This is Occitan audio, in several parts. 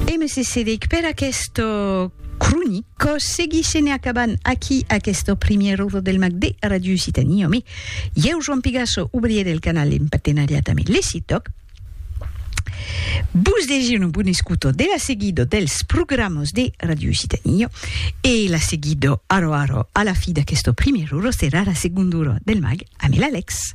E me cessedic per aquesta cronica. Quò seguishe ne acabant aquí aquesta primièra ora del mag de Ràdio Occitània Òme. Ieu, Joan Pigasso, obrier del canal en partenariat ame Lecitoc, vos desir una bona escuta de la seguida dels programas de Ràdio Occitània e la seguida ara ara a la fi d'aquesta primièra ora serà la segonda ora del mag ame l'Alex.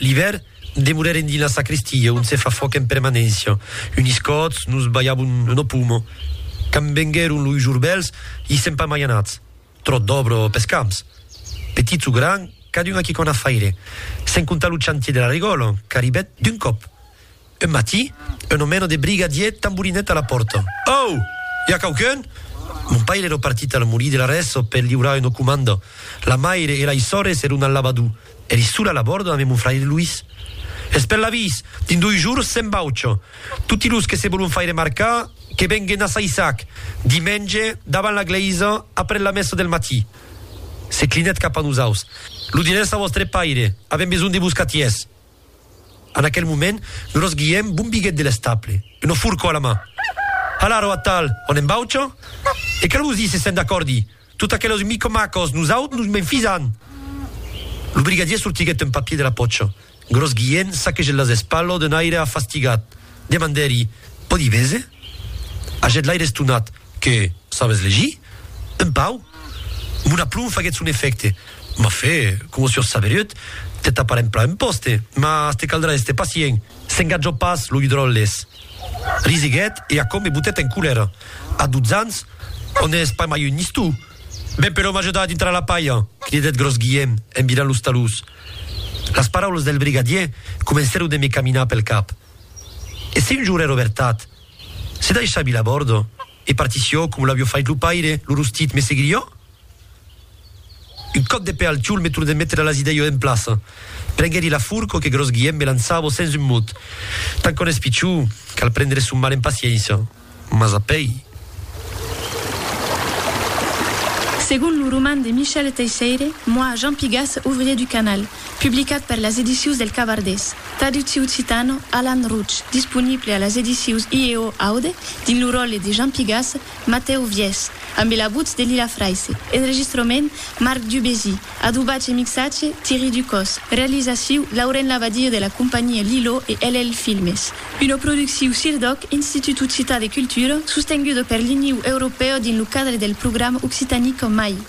L'ivèr, demorèrem dins la sacristia, ont se fa fòc en permanéncia. Unis còts, nos balhavon lo pomo. Quand venguèron loi jorbèls, i sèm pas mai anats. Tròt d'òbra pes camps. Petits o grands, cadun a quicòna faire. Sens comptar lo chantier de la regòla, qu'arribèt d'un còp. Un matí, un omèno de briga dièt tamborinèt a la pòrta. Au! I a quauqu'un? Mon paire ero partit al molí de la Rèso per liurar una comanda. La maire e lai sòrres eron al lavadou. Eri sola a la bòrda ame mon fraire Luís. Es per l'avís! Dins doi jours se'n vaucha. Toti los que se volon faire marcar, que venguen a Saissac, dimenge, davant la glèisa, après la messa del matí. Se clinèt cap a nosaus. Lo dirètz a vòstre paire. Avèm besonh de vos catièrs. En aquel moment, gros Guièm bombiguèt de l'estaple, ua forcò a la man. Hala, ro atal, on en baucha? E qu'a lo vos díser se'n d'acòrdi! Tot aquelos micomacos, nosaut nos m'enfisan! Lo brigadier sortiguèt un papier de la pòcha. Gros Guièm saquegèt las espalhos d'un aire afastigat. Demandèri, Pòdi véser? Hagèt l'aire estonat. Que sabes legir? Un pau? Mon aplomb faguèt son efècte. M'a fait, coma sur Saveruet, te taparem plan un pòste, mas te caldrà èster pacient. S'engatjò pas, lo Hidròles. Risiguèt e aquò me botèt en colèra. A dotze ans, ò n'ès pas mai un nistou? Ben, però m'ajuda a dintrar la palha! cridèt Gròs Guièm en virant los talús. Las paraulas del brigadièr comencèron de me caminar pel cap. E se un jorn èra vertat? Se daissà vila bòrdo e partissió com l'avió fait lo paire, lo rostit me seguirió? Un còp de pè al tiol me tornèt metre las idèio en plaça. Prenguèri la furco que Gròs Guièm me lançavo sens un mot. Tant qu'òn es pichó, cal prendre son mal en paciéncia. Mas a pèi. Segon lo roman de Michel Teisseire, Moi, Jean Pigas, ouvrier du canal, publicat per las Edicions del Cavardés. Traducciu occitano, Alan Routch, disponible a las edicius IEO Aude, dins lo ròle de Jean Pigas, Matèu Viès, ambe la votz de Lila Fraisse, enregistrament, Marc Dubésy, adobatge e mixatge, Thierry Ducos, realizaciu, Lauren Labadie de la companhia Lilo e LL Filmes. Una producciu CIRDOC, Institut Occitan de Cultura, sostenguda per l'Iniu Europèu dins lo cadre del programa Occitanie qu'en mai.